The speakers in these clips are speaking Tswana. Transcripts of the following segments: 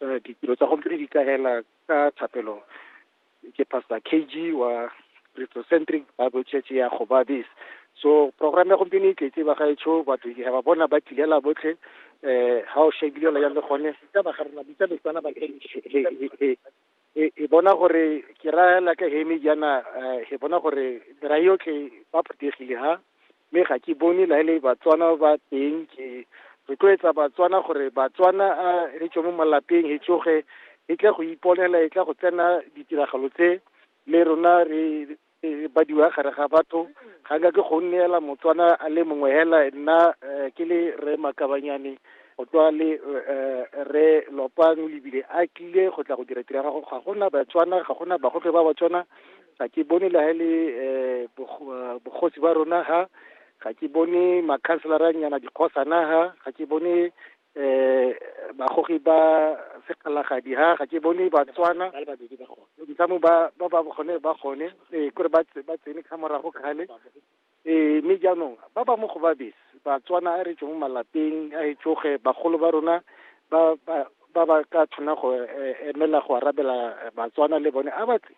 Eh, ditiro tsa gompieno di kaela ka thapelo ke pastor kg wa christocentric bible church ya gobabis so program ya gompieno e tletse ba gaetsho batho ke ba bona ba tlilela botlhe um ga o shebile la jang le gone ka ba ga rena bitsa betsana ba e e bona gore ke ra la ka hemi jana eh, e bona gore ra yotlhe ba phuthegile ha mme ga ke bone la ele batswana ba teng ke rotloetsa batswana gore batswana a re tswe mo malapeng e tsoge e tle go iponela e tle go tsena ditiragalo tse le rona re e badiwa gare ga batho ga nka ke go nneela motswana a le mongwe hela nna eh, ke le re makabanyane go tswa le eh, re lopang lebile a tlile go tla go dira tira gago ga gona batswana ga gona bagofe ba batswana ga ke bone le ha e le eh, bogo- eh, bogosi ba rona ha ga ke bone makhanselaranyana dikgosana ha ga ke bone eh bagogi ba segalagadi ha ga ke bone batswana ntlamo ba ba ba gone ba gone eh kore ba tse- ba tsene ka morago kgale eh mme jaanong ba ba mo go ba bese batswana a re tswe mo malapeng a e tsoge bagolo ba rona ba ba ba ba ka tshwana go eh, emela go arabela eh, batswana le bone a ba tle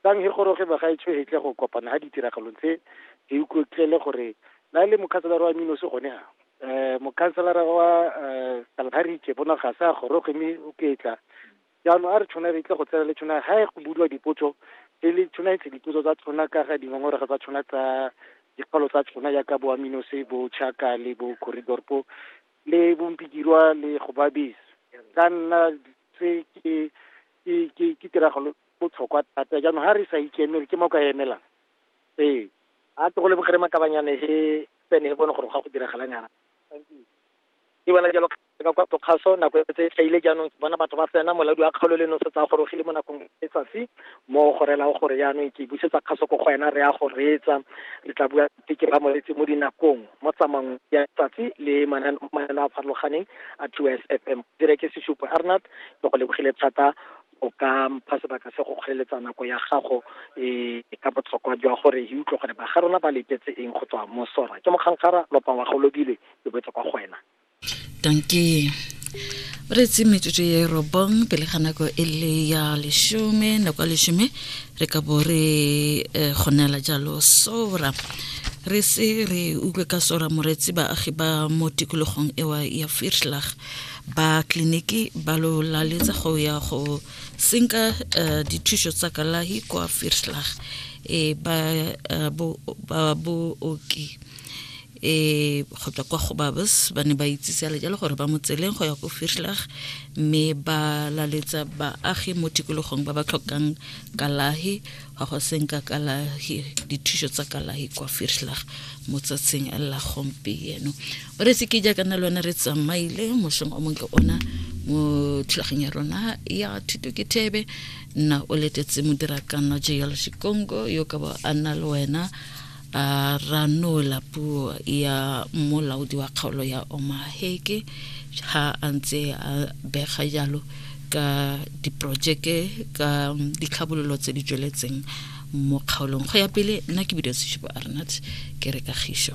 Tang he goroge bagaetsho he tle go kopana ha ditiragalong tse he ukotlele gore na le mokhanselara wa Minosi gone ha eh mokhanselara wa eh Kalahari ke bona ga sa goroge mme o ketla jaanong a re tshwana re tle go tsena le tshwana ha e go budiwa dipotso e le tshwana e tle dipotso tsa tshwana ka ga dingongorego tsa tshwana tsa dikgolo tsa tshwana ya ka boa Minosi bo Chaka le bo Corridor po le bompikirwa le go babis ka nna tse ke ke ke tiragalo botlhokwa thata jaanong ga re sa ikemele ke mo ka emelang ee a tlo go le bogere makabanyane he tsene he bone gore ga go diragala nyana ke bona jalo ka kwa tokgaso nako e tse tlhaile jaanong ke bona batho ba tsena moladi wa kgaolo le nosetsa a gorogile mo nakong e tsatsi mo gorela o gore jaanong ke busetsa kgaso ko go wena re ya go reetsa re tla bua teke ba moletse mo dinakong mo tsamayng ya tsatsi le mananeo a farologaneng a two s f m dire ke sesupo arnat ke go lebogile thata o ka mpha sebaka se go kgweletsa nako ya gago e ka botlhokwa jwa gore e utlwe gore ba ga rona ba letetse eng go tswa mo sora ke mokgangkgara lopa wa golobile ke boetse kwa go wena danke re tse metsotso ye robong pele ga nako e le ya leshome nako ya leshome re ka bo re eh, kgonela jalo sora re se re utlwe ka sora moretsi baagi ba mo tikologong ewa ya firschlag ba tleliniki ba lo laletsa go ya go senka uh, dithuso tsa kalahi kwa firslag e ba uh, bo, ba booki e go tswa kwa go babes ba ne ba itsise le jalo gore ba mo tseleng go ya ko firslag mme ba laletsa baagi mo tikologong ba ba tlhokang kalahi ga go seng ka kalahi dithuso tsa kalahi kwa firslag mo tsatsing la gompieno o re seke jaaka na lone re tsamaile mosong o montle ona mo thulageng ya rona ya thuto ke thebe nna o letetse modira kana jl sekongo yo ka ba a nna le wena a ranola puo ya molaodi wa kgaolo ya omaheke ha a ntse a bega jalo ka diporojeke ka ditlhabololo tse di tsweletseng mo kgaolong go ya pele nna ke bidio sešupo arnat ke re kagišo